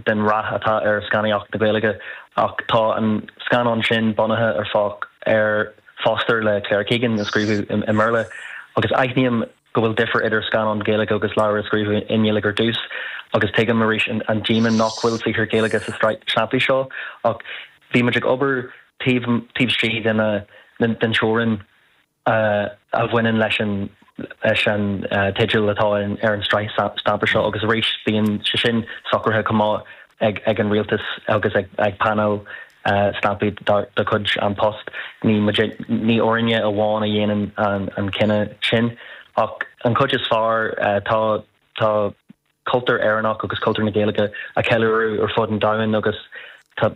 den rath atá ar scannánaíocht na Gaeilge ach tá an scannán sin bunaithe ar Fo ar Foster le Claire Keegan a scríobhadh i mBéarla agus aithním go bhfuil difear idir scannán Gaeilge agus leabhar a scríobhadh i nGaeilge ar dtús agus tuigim arís an díoma nach bhfuil saothar Gaeilge sa tsraith stampaí seo ach bhí muid ag obair taobh istigh den teorainn. a a bhaineann leis an leis an teideal atá ar an tsraith stampaí seo agus arís bíonn sé sin socraithe chomh maith ag ag an rialtas agus ag ag painéal stampaí de chuid An Post. Ní muid ní orainne amháin a dhéanann an an cinneadh sin ach an chuid is fearr tá tá cultúr Éireannach agus cultúr na Gaeilge a cheiliúradh ar fud an domhain agus tá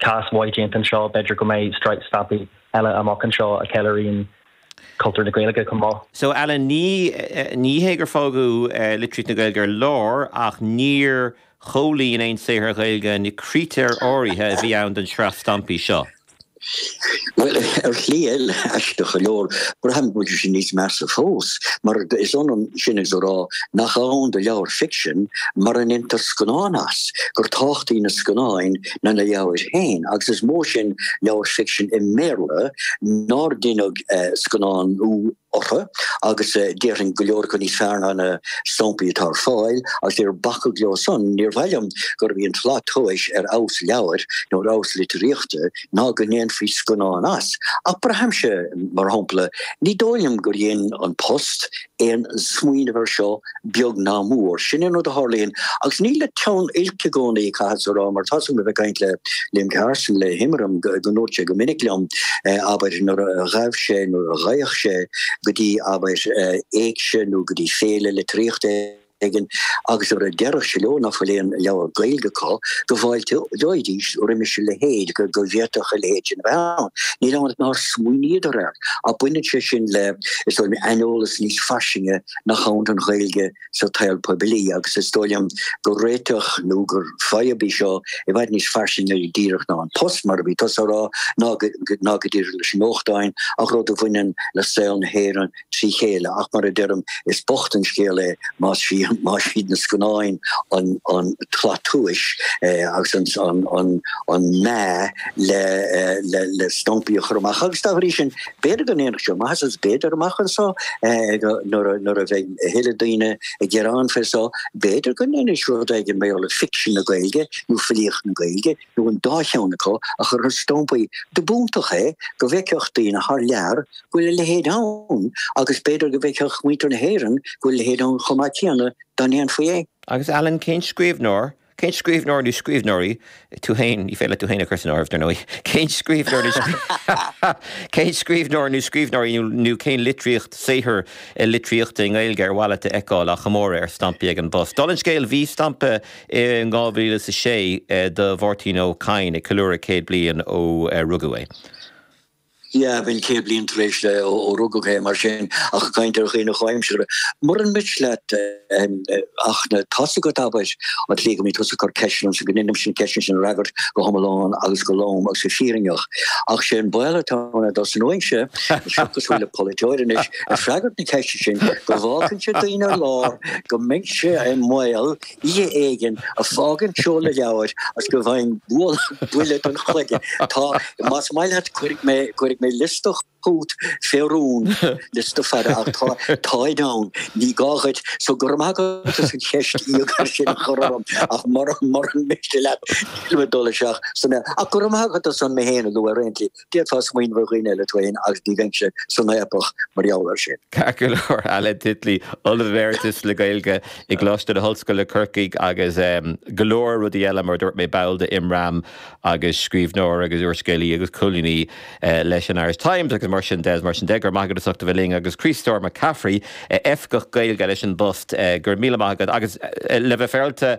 cás maith déanta anseo, b'fhéidir go mbeidh sraith stampaí eile amach anseo a cheiliúrann cultúr na Gaeilge chomh maith. So Alan, ní, ní hé gur fágadh litríocht na Gaeilge ar lár ach níor chomhlíon aon saothar Ghaeilge na critéir áirithe a bhí ann don sraith stampaí seo. Bhuel, ar shlí eile, aisteach go leor, braithim go bhfuil sé níos measa fós, mar is ionann sin is a rá nach ann do leabhar ficsin mura ndéantar scannán as, gur tábhachtaí na scannáin ná na leabhair féin, agus is mó sin leabhar ficsin i mBéarla nár deineadh scannánú. orthu, agus déarfainn go leor acu níos fearr ná na samplaí atá ar fáil, agus níor bacadh leo san. Níor mhaith liom gurbh í an tslat tomhais ar fheabhas leabhair nó ar fheabhas litríochta ná go ndéanfaí scannán as, ach braithimse, mar shampla, ní dóigh liom gur dhein An Post aon smaoineamh air seo beag ná mór. Sin an rud a tharlaíonn. Agus ní le teann oilc i gcónaí caithfeadsa a rá, mar tar éis dom a bheith ag caint le Liam Carson, le hImram, go ndúirt sé go minic liom, abair, nuair a ghabh sé, nuair a ghabhadh sé, go dtí, abair, éigse nó go dtí féile litríochta éigin, agus nuair a déarfadh sé leo nach bhfuil aon leabhar Gaeilge acu, go bhfáilteoidís roimis a leithéid, go bhféadfadh a leithéid sin a bheith ann. Níl ann ach nár smaoiníodar air, ach baineann sé sin le, is dóigh liom, aineolas níos fairsinge nach ann don Ghaeilge sa tsaol poiblí agus is dóigh liom gur réiteach nó gur fadhb í seo i bhfad níos fairsinge díreach ná An Post mar a bhí tusa a rá ná go díreach leis na nuachtáin ach rud a bhaineann le saol na hÉireann trí chéile ach mar a deirim is bocht an scéal é más iad na scannáin an tslat tomhais agus an mheá le stampaí a chur amach agus dá bhrí sin B'fhéidir go ndéanfadh sé maitheas agus b'fhéidir, amach anseo, nuair a bheidh a thuilleadh daoine ag gearán fé seo, b'fhéidir go ndéanfaidís rud éigin maidir le ficsean na Gaeilge nó filíocht na Gaeilge nó an dá cheann acu a chur ar stampaí. Dob iontach é go bhfeicfeadh daoine thar lear go bhfuil a leithéid ann agus b'fhéidir go bhfeicfeadh muintir na hÉireann go bhfuil a leithéid ann chomh maith céanna dá ndéanfaí é. Agus Alan, cén scríbhneoir Cén scríbhneoir, nó scríbhneoirí, tú féin? Ní féidir leat tú féin a chur san áireamh, dar ndóigh. Cén scríbhneoir, nó cén scríbhneoir, nó scríbhneoirí, nó cén litríocht, saothar litríochta i nGaeilge ar mhaith leat a fheiceáil á chomóradh ar stampaí ag an bPost? Dála an scéil, bhí stampa i 2006 do Mháirtín Ó Cadhain ag ceiliúradh céad bliain ó rugadh é. Yeah, bheadh céad bliain tar éis ó rugadh é, mar sin, ach ag caint ar dhaoine comhaimseartha, muran miste leat ach tá a fhios agat abair, an tslí go mbíonn tusa ag cur ceisteanna ormsa, go ndeinimse na ceisteanna sin a fhreagairt go hiomlán agus go lom agus go fírinneach. Ach sé an baol atá ann domsa anois, is cosúil le polaiteoir anois, ag freagairt na ceiste sin, go bhfágfainnse daoine ar lár go mbeinnse i mbaol oíche éigin ag fágaint seoladh leabhair agus go bhfaighinn buille don chloigeann. Tá, más maith leat, cuirfidh mé, cuirfidh mé liosta chugat fé rún, liosta fada, ach tá, táid ann, ní gá dhuit. So, go raibh maith agat as an cheist íogair sin a chur orm, ach mura, mura miste leat, nílim ag dul isteach ansan. Ach go raibh maith agat as an mé féin a lua ar aon tslí. D'fhéadfá smaoineamh ar dhaoine eile féin agus ní bheinnse san fhaopach mar gheall air sin. Ceart go leor, Alan Titley, Ollamh Emeritus le Gaeilge i gColáiste na hOllscoile, Corcaigh agus go leor rudaí eile, mar a dúirt mé, ball de Imram agus scríbhneoir agus úrscéalaí agus colúnaí leis an Irish Times agus mar sin de, mar sin de. Go raibh maith agat as ucht a bheith linn agus Críostóir Mac Gafraidh, Oifigeach Gaeilge leis an bPost, go raibh míle maith agat agus le bheith féaráilte,